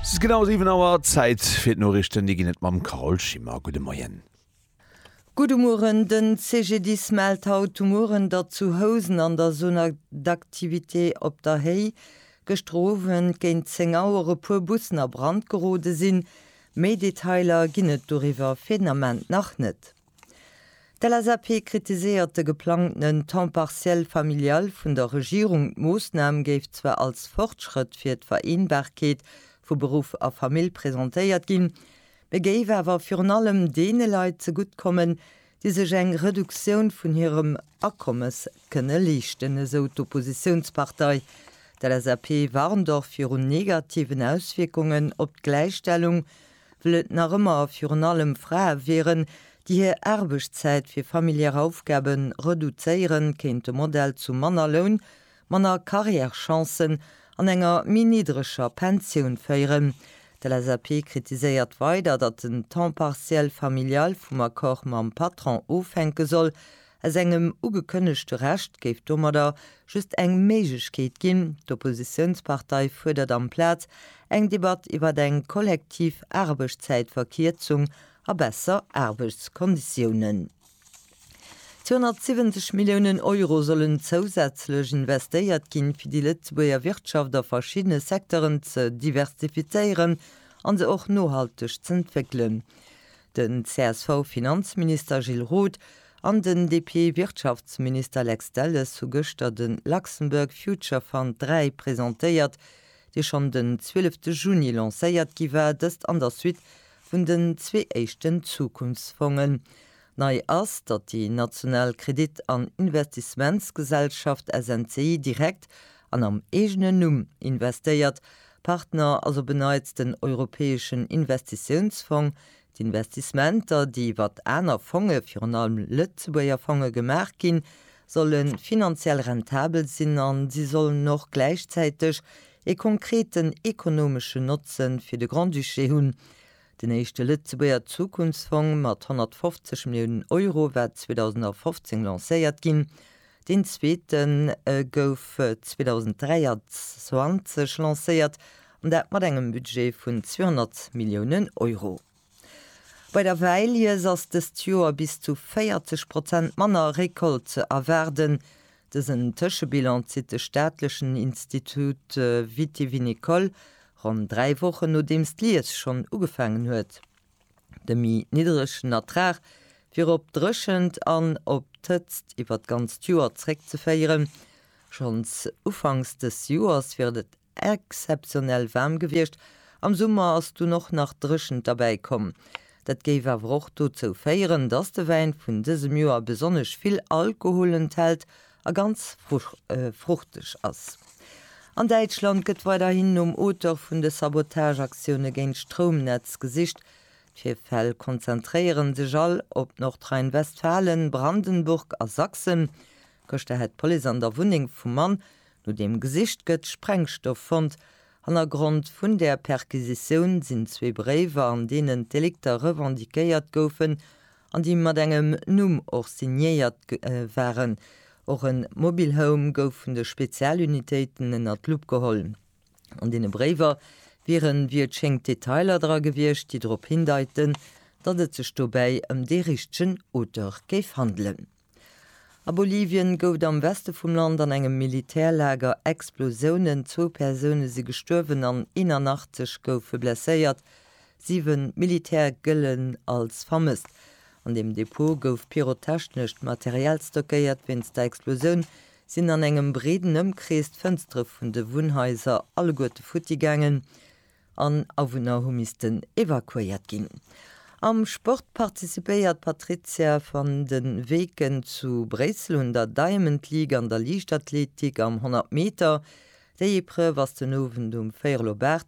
Et ass genau 7 Auer, Zäit fir d'Noriichten. Déi ginn et mam Carole Schimmer. Gudde Moien. Gudde Mueren. Den CGDIS mellt haut de Mueren, datt zu Housen an der Zone d'activité Op der Héi gëschter Owend géint 10 Auer e puer Bussen a Brand gerode sinn. Méi Detailer ginn et doriwwer fir den Ament nach net. D'LSAP kritiséiert de geplangtenen Temps partiel familial vun der Regierung. D'Moossnam géif zwar als Fortschrëtt fir d'Vereenbarkeet vu Beruff a Famill presentéiert ginn, mee géif awer virun allem deene Leit zegutt kommen, déi sech eng Reduktioun vun hirem Akommes kënne leeschten, esou d'Oppositiounspartei. D'LSAP warnt och virun negativen Auswierkungen op d'Gläichstellung well et nach ëmmer a virun allem Frae wieren, déi hir Aarbechtszäit fir familiär Aufgabe reduzéieren, kéint de Modell zu manner Loun, manner Carrièrechancen an enger méi niddreger Pensioun féieren. D'LSAP kritiséiert weider, datt den Temps partiel familial vum Accord mam Patron ofhänke soll, Aus engem ugekënnegte Rescht géif domadder just eng Méiglechkeet ginn. D'Oppositiounspartei fuerdert amplaz eng Debatt iwwert eng kollektiv Aarbechtszäitverkierzung a besser Aarbechtskonditiounen. 270 Milliounen Euro sollen zousätzlech investéiert ginn, fir déi Lëtzebuerger Wirtschaft a verschiddene Secteuren ze diversifizéieren an se och nohalteg z'entwéckelen. Den CSV-Finanzminister Gilles Roth an den DP-Wirtschaftsminister Lex Delles hu gëschter de Luxembourg Future Fund 3 presentéiert, dee schonn den 12 Juni lancéiert gi war, dëst an der Suite vun den zwee éischten Zukunftsfongen. Nei ass, datt déi national Kredit an Investissementsgesellschaft SNCI direkt An am eegenen Numm investéiert. Partner ass op en Neits den Europäeschen Investitiounsfong. D'Investissementer, déi iwwer aner Fonge, virun allem Lëtzebuerger Fonge, gemaach ginn, solle finanziell rentabel sinn a si sollen och gläichzäiteg ee konkreten ekonomeschen Notze fir de Grand-Duché hunn. Den éischte Lëtzebuerger Zukunftsfong mat 150 Milliounen Euro war 2015 lancéiert ginn. Deen zweete gouf 2023 lancéiert, an dat mat engem Budget vun 200 Milliounen Euro. Bei der Wäilies ass dëst Joer bis zu 40 Prozent manner Récolte ze erwaarden. Dësen Tëschebilan zitt de staatlechen Institut vitivinicole ronn dräi Wochen, nodeems d'Lies schonn ugefaangen huet. De méi niddregen Ertrag wier op d'Dréchent an op d'Hëtzt iwwert d'ganzt Joer zréckzeféieren. Schonns ufanks dës Joers wier et exzeptionell waarm gewiescht, am Summer ass dunn och nach d'Dréchent derbäi komm. Dat géif awer och dozou féieren, datt de Wäin vun dësem Joer besonnesch vill Alkohol enthält a ganz fruchteg ass. An Däitschland gëtt weiderhin nom Auteur vun de Sabotageaktioune géint d'Stroumnetz gesicht. D'Virfäll konzentréiere sech all op Nordrhein-Westfalen, Brandenburg a Sachsen. Gëschter hätt d'Police an der Wunneng vum Mann, no deem gesicht gëtt, Sprengstoff fonnt. Hannergrond vun där Perquisitioun sinn zwee Bréiwer, an deenen d'Delikter revendiquéiert goufen an déi mat engem Numm och signéiert waren. Och e Mobile Home gouf vun de Spezialunitéiten ënner d'Lupp geholl. An deene Bréiwer wieren, wéi et schéngt, Detailer dra gewiescht, déi drop hindeiten, datt et sech dobäi ëm dee richtegen Auteur géif handelen. A Bolivien gouf et am Weste vum Land an engem Militärlager Explosiounen. Zwou Persoune si gestuerwen an 81 goufe blesséiert. Siwen Militäre gëllen als vermësst. An deem Depot gouf pyrotechnescht Material stockéiert. Wéinst der Explosioun sinn an engem breeden Ëmkrees d'Fënstere vun de Wunnhaiser alleguerte futti gaangen. an Awunner hu missten evakuéiert ginn. Am Sport participéiert d'Patrizia van de Weken zu Bréissel un der Diamond League an der Liichtathletik am 100 Meter. Déi Epreuve ass den Owend um véierel op 8.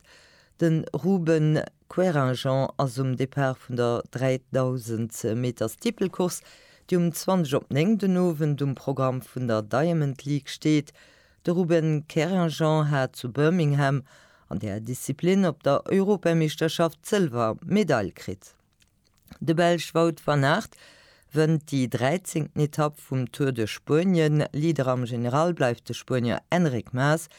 De Ruben Querinjean ass um Depart vun der 3000 Meter Steeplecourse, déi um 20 op 9 den Owend um Programm vun der Diamond League steet. De Ruben Querinjean hat zu Birmingham an där Disziplin op der Europameeschterschaft d'Sëlwer Medail kritt. De Belsch Wout van Aert wënnt déi 13. Etapp vum Tour de Spuenien. Leader am General bleift de Spuenier Enric Mas.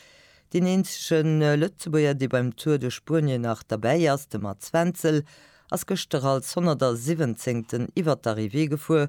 Deen eenzege Lëtzebuerger, dee beim Tour de Spuenien nach derbäi ass, de Mats Wenzel, ass gëschter als 117. iwwert d'Arrivée gefuer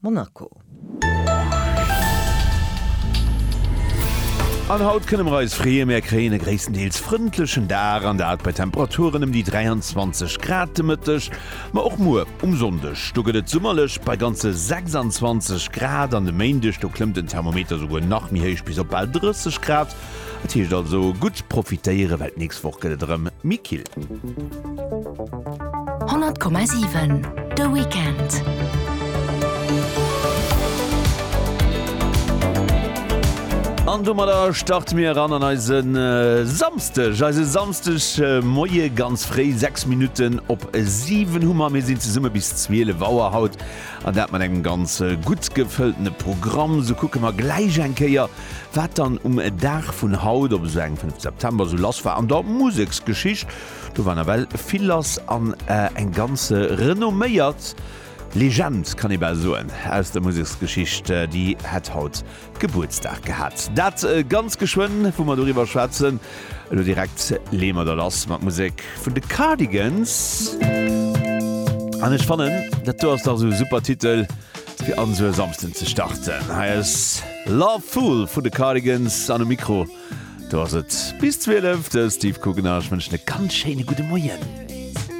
Monaco. An haut kënne mer eis freeë, mär kréien e gréisstendeels frëndlechen Dag, an dat bei Temperaturen ëm déi 23 Grad de Mëtteg. Ma och muer um Sonndeg, do gëtt et summerlech bei ganze 26 Grad, an de Méindeg, do klëmmt den Thermometer souguer nach méi héich, bis op bal 30 Grad. Et heescht also gutt profitéieren, well d'nächst Woch gëtt et erëm méi kill. 100,7 de Weekend. An domadder starte mir eran an eise Samsteg eise Samsteg äh, Moie ganz fréi 6 Minuten op 7 Hummer mir sinn ze summe bis 12 Waer haut An dat mat engem ganz gutt gefëlltene Programm. Sou kucke mer gläich eng Kéier, wat dann um Dag vun haut, op esou engem 5 September, sou lass war an der Museksgeschicht. Do war nawell vill lass an eng ganz renomméiert Legend, kann ee bal soen, aus der Museksgeschicht, déi hätt haut Gebuertsdag gehat. Dat ganz geschwënn, wou mer doriwwer schwätzen. Elo direkt leeë mer da lass mat Musek vun de Cardigans. An ech fannen, dat do ass dach esou e super Titel, fir an esou e Samsden ze starten. Hei ass Love Fool vun de Cardigans an um Mikro, do ass et bis 12, de Steve Guggenheim. Ech wënschen e ganz schéine gudde Moien.